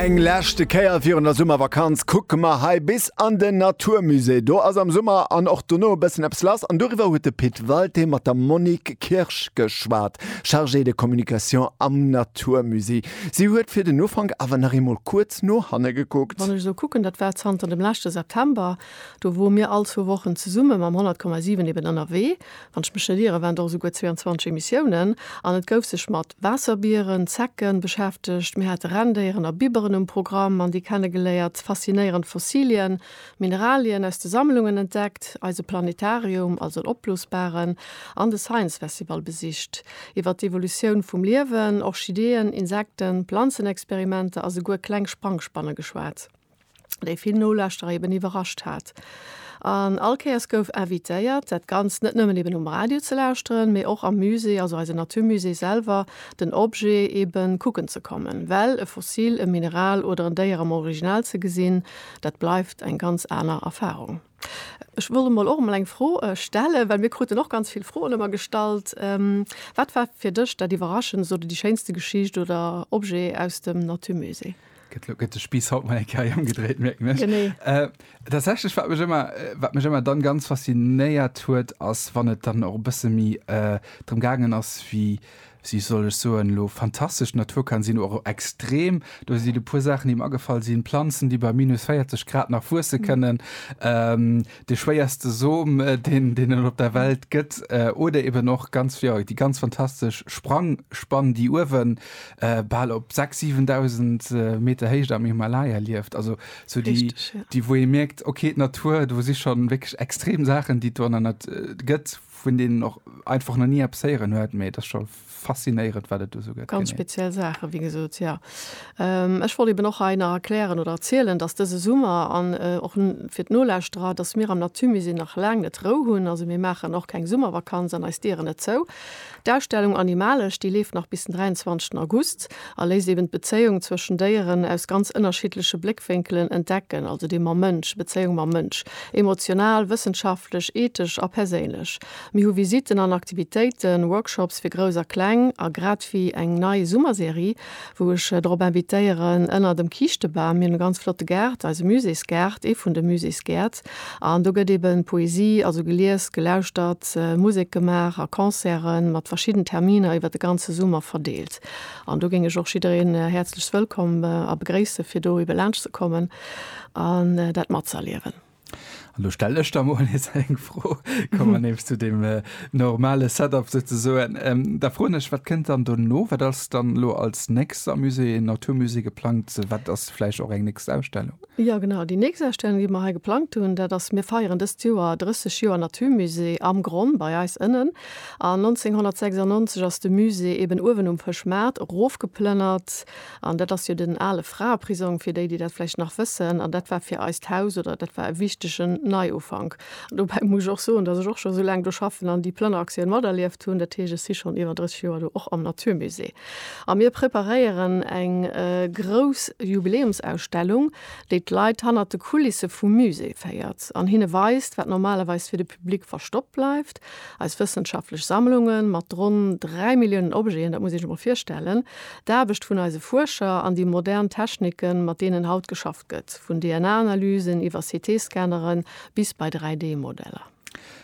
Eng leschte Kéier virun der Summervakanz kucke mer hei bis an den Naturmusée. Do ass am Summer an och dono e bëssen eppes lass an doriwwer huet de Pit Walté mat der Monique Kirsch geschwat, Chargée de communication am Naturmusée. Si huet fir den Ufank awer nach eemol kuerz no hanne gekuckt. Wann ech esou kucken, dat war zanter dem leschte September, do wou mir all zwou Wochen zesumme mam 100,7 eben ënnerwee. Wann ech mech net iere waren et och esouguer 22 Emissiounen. An et gouf sech mat Waasserbieren, Zecken, beschäftegt, mir hate Renndéieren a Biberen um Programm an déi kenne geléiert, faszinéierend Fossilien, Mineralien aus de Sammlungen entdeckt, eise Planetarium, also en opblosbaren, an de Science Festival besicht. Iwwer d'Evolutioun vum Liewen, Orchideeën, Insekten, Planzenexperimenter a souguer kleng Sprangspanne geschwat. déi vill Nolauschterer eben iwwerrascht hat. An all Kéiers gouf invitéiert, dat Ganzt net nëmmen eben um Radio ze lauschteren, mee och am Musée, also eise Naturmusée selwer, den Objet eben kucken ze kommen. Well e Fossil, e Mineral oder en Déier am Original ze gesinn, dat bleift eng ganz aner Erfarung. Ech wollt emol och emol eng Fro stellen, well mir kruten och ganz vill Froen ëmmer gestallt. Wat war fir dech dat Iwwerraschendst oder déi schéinste Geschicht oder Objet aus dem Naturmusée? gëtt de Spiiss haut mei Käi ëmgedréit mierken ech. Genee. Äh, tatsächlech, wat mech ëmmer, äh, wat mech ëmmer dann ganz faszinéiert huet, ass, wann et dann och e bësse méi äh, drëm gaangen ass, wéi si soll ech soen, lo fantastesch d'Natur kann sinn, och extrem. Do sinn e puer Saachen, déi mer agefall sinn, Planzen, déi bei minus 40 Grad nach wuesse kënnen, ähm, de schwéierste Som deen deen et op der Welt gëtt oder eben och ganz jo déi ganz fantastesch Sprangspann déi uewen bal op 6 7000 Meter Héicht am Himalaya lieft, also sou déi Richteg, ja. déi wou ee mierkt ok d'Natur do si schonn wierklech extrem Saachen déi et do an der Nat gëtt vun deenen och einfach nach ni eppes héieren huet, mee et ass scho faszinéirend wat et do sou gëtt. Ganz speziell Saachen, wéi gesot, jo. Ech wollt eben och hei nach erklären oder erzielen, dass dëse Summer an och fir d'Nolauschterer, dass mir am Naturmusée nach laang net Rou hunn. Also mir maachen och keng Summervakanz an eis Dieren net zou. D'Ausstellung Animalesch, déi leeft nach bis den 23 August a léisst eben d'Bezéiung zwëschen Déieren aus ganz ënnerschiddleche Bléckwénkelen entdecken, also déi mam Mënsch, Bezéiung mam Mënsch, emotional, wëssenschaftlech, ethesch a perséinlech. Mir hu Visitten an Aktivitéiten, Workshops fir Grouss a Kleng a grad ewéi eng nei Summerserie, wou ech drop invitéieren, Ënner dem Kiischtebam. Mir hunn e ganz flotte Gaart, eise Muséesgaart, ee vun de Muséesgäert. An do gëtt eben Poesie, also gelies, gelauschtert, Musek gemaach a Concerten mat verschidden Terminer iwwert de ganze Summer verdeelt. An do géing ech och jiddereen häerzlechst wëllkomm a begréisse fir do ebe laanscht ze kommen an dat matzerliewen. An do stelle ech da mol nees eng Fro, komme mer nees zu deem normale Setup souzesoen. Da froen ech, wat kënnt dann dono? Wat ass dann elo als nächst am Musée Natur Musée geplangt? Wat ass vläicht och eng nächst Ausstellung? Jo, genau, déi nächst Ausstellung, déi mer hei geplangt hunn, dat ass, mir feieren dëst Joer 30 Joer Natur Musée am Gronn bei eis ënnen. An 1996 ass de Musée eeben uewen um Fëschmaart erofgeplënnert An dat ass jo den ale Fraeprisong, fir déi, déi dat vläicht nach wëssen. An dat war fir eist Haus oder dat war e wichtegen Neiufank. An dobäi muss ech och soen, dass ech och scho sou laang do schaffen an déi Plënneraktioun materlieft hunn. Dat heescht, ech si schonn iwwer 30 Joer do, och am Naturmusée. A mir preparéieren eng grouss Jubiläumsausstellung, déi d'Leit hannert de Kulisse vum Musée féiert an hinne weist, wat normalerweis fir de Public verstoppt bleift, eis wëssenschaftlech Sammlungen mat ronn dräi Milliounen Objeten, dat muss ee sech emol virstellen, D'Aarbecht vun eise Fuerscher an déi modern Techniken, mat deenen haut geschafft gëtt, vun DNA-Analysen iwwer CT-Scannere bis bei 3D-Modeller.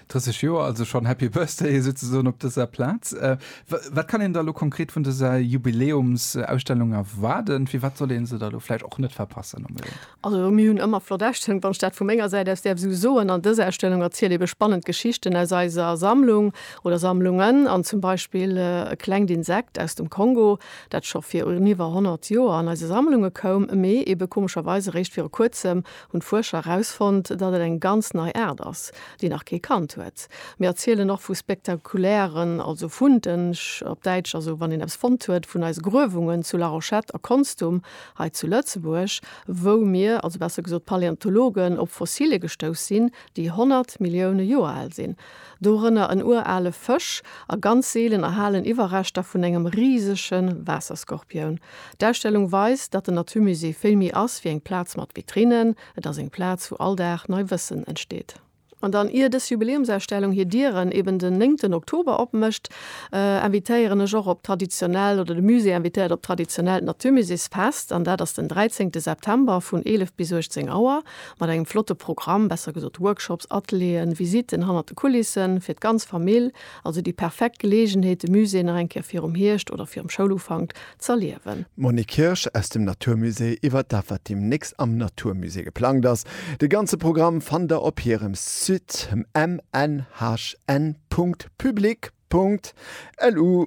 30 Joer, also schonn Happy Birthday souzesoen op dëser Plaz. Wat kann een da lo konkret vun dëser Jubiläumsausstellung erwaarden? Firwat soll ee se da lo vläicht och net verpassen? Also mir hunn ëmmer flott Ausstellungen, wann ech dat vu menger Säit aus däerf esou soen. An dës Ausstellung erzielt eebe spannend Geschichten aus eiser Sammlung oder Sammlungen an zum Beispill e klengt Insekt aus dem Kongo, dat scho vir un iwwer 100 Joer an eise Sammlunge koum, mee eebe komescherweis eréischt viru kuerzem hunn d'Fuerscher erausfonnt, datt et eng ganz nei Aart ass, déi nach kee kannt huet. Mir erzielen och vu spektakulären, also Funde op Däitsch, also wann een eppes fonnt huet, vun eise Gruewungen zu Larochette a Konstum Hei zu Lëtzebuerg, wou mir, also besser gesot d'Paläontologen, op Fossilien gestouss sinn, déi 100 Millioune Joer al sinn, dorënner en urale Fësch a ganz seelen erhalen Iwwerreschter vun engem risege Waasserskorpioun. D'Ausstellung weist, datt den Naturmusée vill méi ass wéi eng Plaz mat Vitrinnen, et ass eng Plaz, wou all Dag nei Wëssen entsteet. An dann, ier dës Jubiläumsausstellung hir Dieren eben den néngten Oktober opmécht, invitéieren ech och op traditionellt, oder de Musée invitéiert op traditionellt Naturmuséesfest. An dat ass den dräizéngte September vun 11 bis 18 Auer mat engem flotte Programm, besser gesot Workshops, Atelieren, Visitten hannert de Kulissen, fir d'ganz Famill. Also déi perfekt Geleegenheet, de Musée nach eng Kéier virum Hierscht oder virum Schoulufank z'erliewen. D'Monique Kirsch aus dem Natur Musée iwwert dat wat deemnächst am Natur Musée geplangt ass. De ganze Programm fannt der op hirem Site mnhn.public.lu.